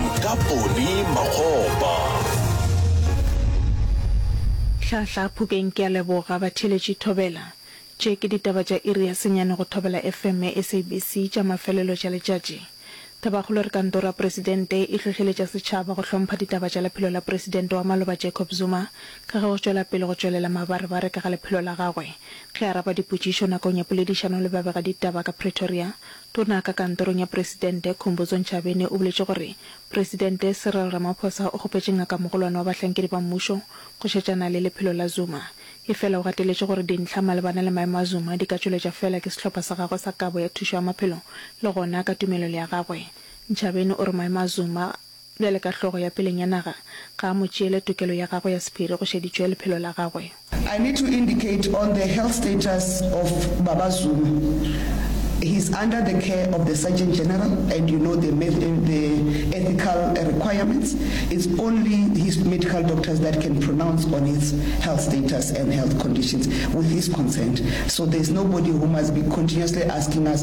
Mokapone Makgopa. Hlahla Phukeng Ke a leboga batheeletši Thobela. Tše ke ditaba tša iri ya senyane go Thobela FM ya SABC tša mafelelo tša letšatši. Thabakgolo re Kantoro ya Presidente e hlohleletša setšhaba go hlompha ditaba tša lephelo la Presidente wa maloba Jacob Zuma ka ge go tšwela pele go tšwelela mabarebare ka ga lephelo la gagwe. Ge araba dipotšišo nakong ya poledišano le babegaditaba ka Pretoria, Tona ka kantorong ya Presidente, Khumbudzo Ntshavheni o boletše gore Presidente Cyril Ramaphosa o kgopetše Ngakamogolwane wa bahlankedi ba mmušo go šetšana le lephelo la Zuma. Efela o gateletše gore dintlha malebana le maemo a Zuma di ka tšweletša feela ke sehlopha sa gagwe sa kabo ya thušo ya maphelo le gona ka tumelelo ya gagwe. Ntshavheni o re maemo a Zuma, Bjale ka hlogo ya peleng ya naga, ga a mo tšeele tokelo ya gagwe ya sephiri go šeditšwe lephelo la gagwe. I need to indicate on the health status of Baba Zuma, he is under the care of the Surgeon General and you know the the ethical requirements, it's only his medical doctors that can pronounce on his health status and health conditions with his consent, so there's nobody who must be continuously asking us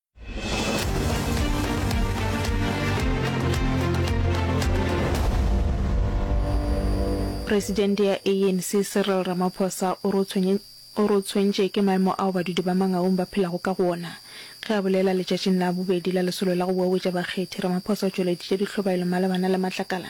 Presidente ya ANC Cyril Ramaphosa o re o re o tshwentše ke maemo ao badudi ba Mangaung ba phelago ka go ona. Ge a bolela letšatšing la bobedi la lesolo la go wewetša bakgethi, Ramaphosa o tšweleditše ditlhobaelo malebana le matlakala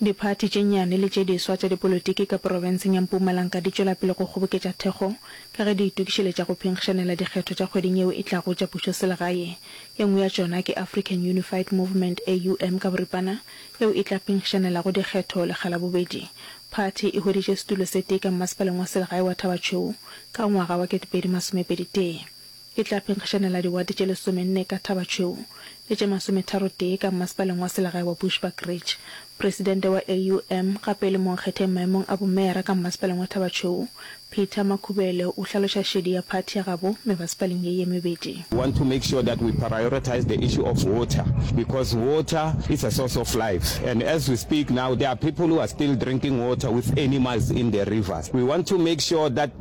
Diphathi tše nnyane le tše diswa tša dipolotiki ka porofenseng ya Mpumalanga di tšwela pele go kgoboketša thekgo ka ge di itokišeletša go phinkgišanela dikgetho tša kgweding yeo e tlago tša pušoselegae. E nngwe ya tšona ke African Unified Movement, AUM ka boripana, yeo e tla phinkgišanelago dikgetho lekga la bobedi. Phathi e hweditše setulo se tee ka mmasepaleng wa selegae wa Thaba Tšhweu ka ngwaga wa 2021. E tla phenkgišanela diwate tše lesomenne ka Thaba Tšhweu le tše masometharotee ka mmasepaleng wa selegae wa Bushbuckridge. Presidente wa AUM gape e le monkgetheng maemong a bomeyara ka mmasepaleng wa Thaba Tšhweu, Peter Makhubele o hlaloša šedi ya phathi ya gabo mebasepaleng ye ye mebedi. We want to make sure that we prioritize the issue of water because water is a source of life and as we speak now there are people who are still drinking water with animals in the rivers. We want to make sure that.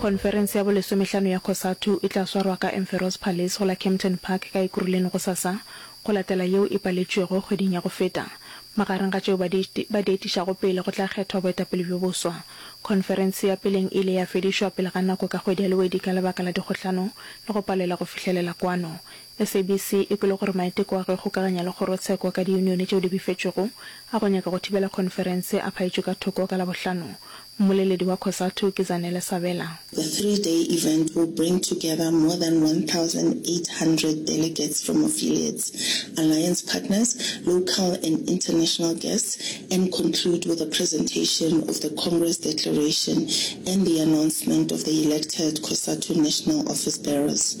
Khonferense ya bolesomehlano ya Cosatu e tla swarwa ka Emferor's Palace go la Kempton Park ka Ekuruleni gosasa, go latela yeo e paletšwego kgweding ya go feta. Magareng ga tšeo ba di etišago pele go tla kgethwa boetapele bjo boswa. Khonferense ya peleng e ile ya fedišwa pele ga nako ka kgwedi ya Lwedi ka lebaka la dikgohlano le go palelwa go fihlelela kwano SABC e kwele gore maiteko a go ikgokaganya le kgorotsheko ka diyunione tšeo di befetšwego a go nyaka go thibela khonferense a phaetšwe ka thoko ka Labohlano. Mmoleledi wa Cosatu ke Zanele Sabela. The three day event will bring together more than 1,800 delegates from affiliates, alliance partners, local and international guests and conclude with a presentation of the Congress declaration and the announcement of the elected Cosatu National Office Bearers.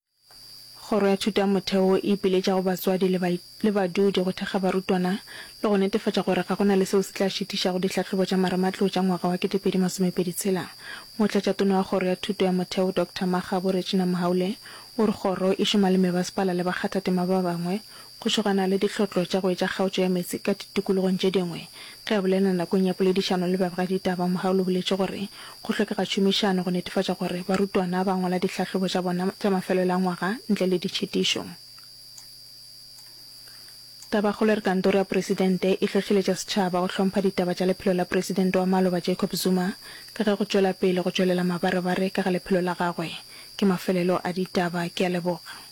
Kgoro ya Thutomotheo e ipiletša go batswadi le le badudi go thekga barutwana le go netefatša gore ga go na le seo se tla šitišago dihlahlobo tša marematlou tša ngwaga wa 2026. Motlatšatona wa Kgoro ya Thuto ya Motheo Doctor Makgabo Regina Mohaule o re kgoro e šoma le mebasepala le bakgathatema ba bangwe Go šogana le dihlotlo tša go etša kgaotšo ya meetse ka ditikologong tše dingwe. Ge a bolela nakong ya poledišano le babegaditaba, Mohaul o boletše gore go hlokega tšhomišano go netefatša gore barutwana ba ngwala dihlahlobo tša bona tša mafelelo a ngwaga ntle le ditšhitišo. Tabakgolo e re Kantoro ya Presidente e hlohleletša setšhaba go hlompha ditaba tša lephelo la Presidente wa maloba Jacob Zuma ka ge go tšwela pele go tšwelela mabarebare ka ga lephelo la gagwe ke mafelelo a ditaba. Ke a leboga.